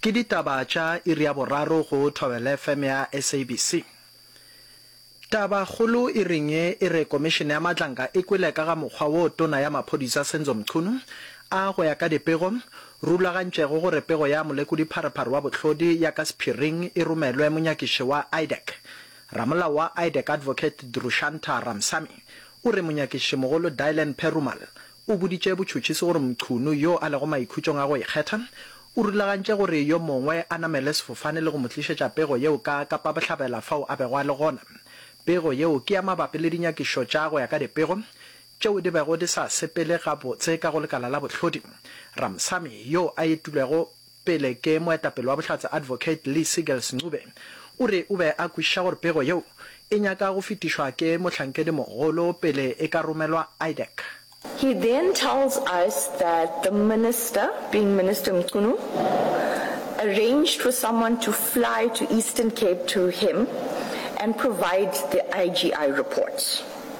Ke ditaba tša iri ya boraro go Thobela FM ya SABC. Taba kgolo iring ye e re Komišene ya Matlanka e kwele ka ga mokgwa wo Tona ya Maphodisa Senzo Mchunu a, go ya ka dipego, rulagantšego gore pego ya Molekodi-Pharephare wa Bohlodi ya ka sephiring e romelwe monyakiši wa IDAC. Ramolao wa IDAC Advocate Drushantar Ramsamy o re monyakišimogolo Dylan Perumal O boditše botšhotšhisi gore Mchunu, yo a lego maikhutšong a go ikgetha, o rulagantše gore yo mongwe a namele sefofane le go mo tlišetša pego yeo ka Kapa Bohlabela fao a bego a le gona. Pego yeo ke ya mabapi le dinyakišo tša go ya ka dipego tšeo di bego di sa sepele gabotse ka go lekala la bohlodi. Ramsamy, yo a etilwego Pele ke moetapele wa Bohlatse Advocate Lee Siegels Ncube o re o be a kwešiša gore pego yeo e nyaka go fetišwa ke mohlankedi mogolo pele e ka romelwa IDAC. He then tells us that the Minister, being Minister Mchunu, arranged for someone to fly to Eastern Cape to him and provide the IGI report.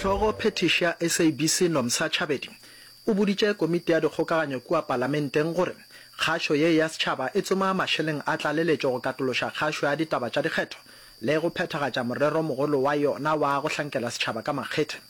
Hlogo phethiši ya SABC Nomsa Chabedi o boditše komiti ya dikgokaganyo kua palamenteng gore kgašo ye ya setšhaba e tsoma mašeleng a tlaleletšo go katološa kgašo ya ditaba tša dikgetho le go phethagatša morero mogolo wa yona wa go hlankela setšhaba ka makgethe.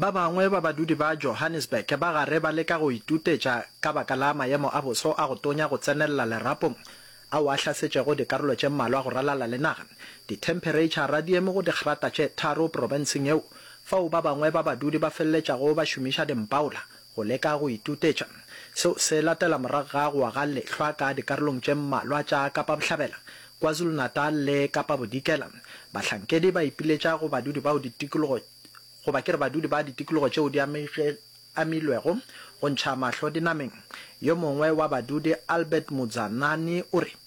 Ba bangwe ba badudi ba Johannesburg ba gare ba leka go itutetša ka baka la mayemo a boso a go tonya go tsenelela lerapong ao a hlasetšego dikarolo tše mmalwa go ralala le naga, dithempereitšhara di eme go digrata tše tharo profenseng yeo, fao ba bangwe ba badudi ba feleletšago ba šomiša dimpaola Go leka go itutetša seo se latela morago ga go wa ga lehlwa ka dikarolong tše mmalwa tša Kapa Bohlabela, KwaZulu-Natal le Kapa Bodikela. Bahlankedi ba ipiletša go badudi bao ditikologo goba ke re badudi ba ditikologo tšeo di amilwego go ntšha mahlo dinameng. Yo mongwe wa badudi Albert Mudzanani o re.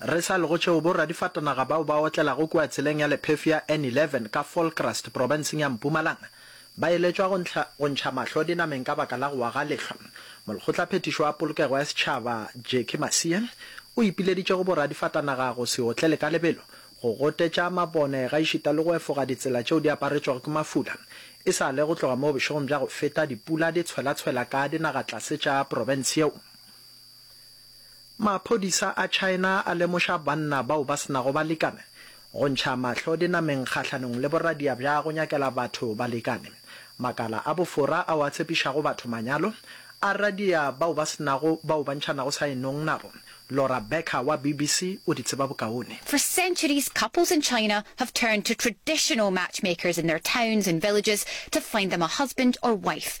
Re sa lego tšeo, bo-radifatanaga bao ba otlelago kua tseleng ya lephefo ya N11 ka Vollkrast profenseng ya Mpumalanga ba eletšwa go ntlha go ntšha mahlo dinameng ka baka la go wa ga lehlwa. Molekgotlaphethišo wa Polokego ya Setšhaba, Jackie Masia, o ipileditše go bo-radifatanaga go se otlele ka lebelo, go gotetša mabone gaešita le go efoga ditsela tšeo di aparetšwego ke mafula e sa le go tloga moo bošegong bja go feta dipula di tshwela-tshwela ka dinagatlase tša profense yeo. Maphodisa a China a lemoša banna bao ba se nago balekane go ntšha mahlo dinameng kgahlanong le boradia bja go nyakela batho balekane. Makala a bofora ao a tshepišago batho manyalo a radia bao ba se nago bao ba ntšhanago saenong nabo. Laura Becker wa BBC o di tseba bokaone. For centuries, couples in China have turned to traditional matchmakers in their towns and villages to find them a husband or wife.